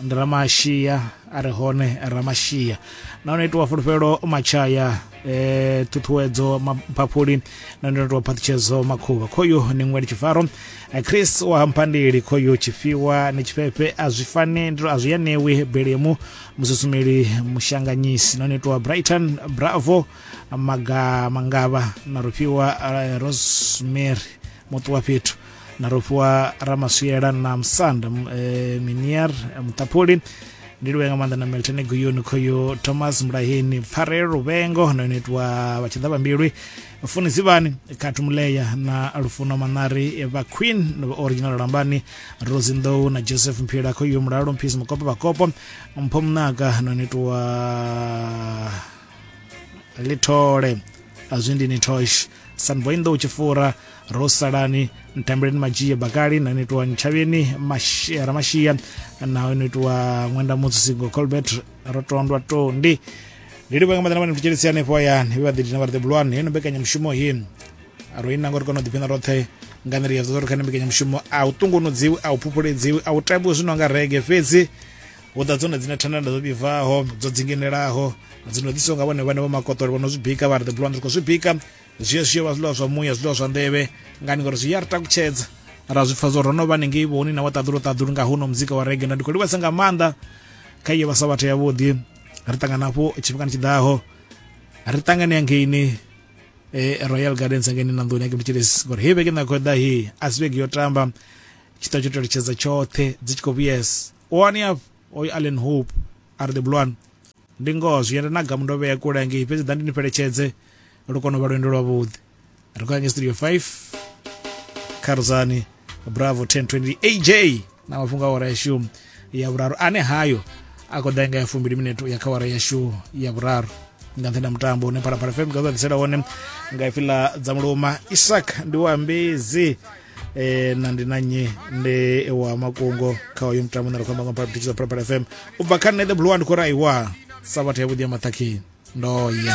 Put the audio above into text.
ndi ramashia a re hone ramashia nahone itiwa fulufhelo matshaya eh ṱhuṱhuwedzo maphaphuli na ndi itiwa phaṱhutshedzo makhuvha khoyu ni ṅweli tshifaro eh, chris wa hamphandeli khoyu tshifhiwa ni tshifhefe a zwi fane ndi a zwi ya newi belemu mususumeli mushanganyisi nahone itiwa brighton bravo maga mangavha na rufhiwa eh, rosemary muṱu wa fhethu na rofhiwa ramaswiela na musanda eh, minier eh, muṱaphuli ndi luvhe nga maanḓa na milton guyuni khoyo thomas mulaheni pfarelo luvengo na yone itiwa vha tshi ḓa vhambilwi funi zivhani khathu muleya na lufuno manari vha queen na vha original lambani rosi nḓou na joseph mphila khoyo mulalo mphisi mukopo vhakopo mpho munaga na yone itiwa lithole azwi ndi ni tosh sanvoinḓo u tshi fura ro salani ntambeleni madzhie bakali na no itiwa ntshavheni ramashia na no itiwa ṅwenda mutsisingo colbert ro tondwa tondi ndi livha nga maḓana vhane mthutshelisi hanefho hayani vhe vhaḓi dina vha ri ḓebulwane heno mbekanyamushumo he ro ina ngori kona u ḓiphina roṱhe nga nḓila ya zwa uri kha ni mbekanyamushumo a u ṱungunudziwi a u phuphuledziwi a u tambiwi zwi no nga rege fhedzi hu ḓa dzone dzine thandanda dzo vhibvaho dzo dzinginelaho dzi no ḓisiwa nga vhone vhane vho makotolo vho no zwi bika vha ri the blond ri khou zwi bika zwi zwi vha zwiḽiwa zwa muya zwiḽiwa zwa nḓevhe ngani ngori zwi ya ri takutshedza ra zwi pfa zwo ro no vha nengei vhoni na wa ṱaḓulu ṱaḓulu nga huno muzika wa rege na ndi khou livhasa nga maanḓa kha iyo vhasa vhathu yavhuḓi ri ṱangana hafho tshifhingani tshiḓaho ri ṱangane ya ngeini eh, royal gardens ngeini na nḓuni ya kemtshilesi ngori hei vhege nda khou ḓa hei a si vhege yo tamba tshita tsho teletshedza tshoṱhe dzi tshi khou vhuyesa o aniaf o i allen hope a ri ḓibulwani ndi ngoho zwi yenda na gamu ndo vhea kule ngei fhedzi ḓa ndi ni fheletshedze lu kone u vha lwendo lwavhuḓi ri khou ya nge studio 5 kharudzani bravo 1020 aj na mafhungo a wara yashu ya vhuraru ane hayo a khou ḓa nga ya fumbili minete ya kha wara yashu ya vhuraru nga nṱhenda mutambo une phalaphala fm nga ḓisela wone nga ifi ḽa dza muluma isak ndi wa mbezi eh na ndi na nnyi ndi wa makungo kha uyu mutambo na ri khou amba nga mphaphaphi digital purple fm u bva kha nṋe the blue one ndi khou ri aiwa sabatha yavhuḓi ya maṱhakheni ndo ya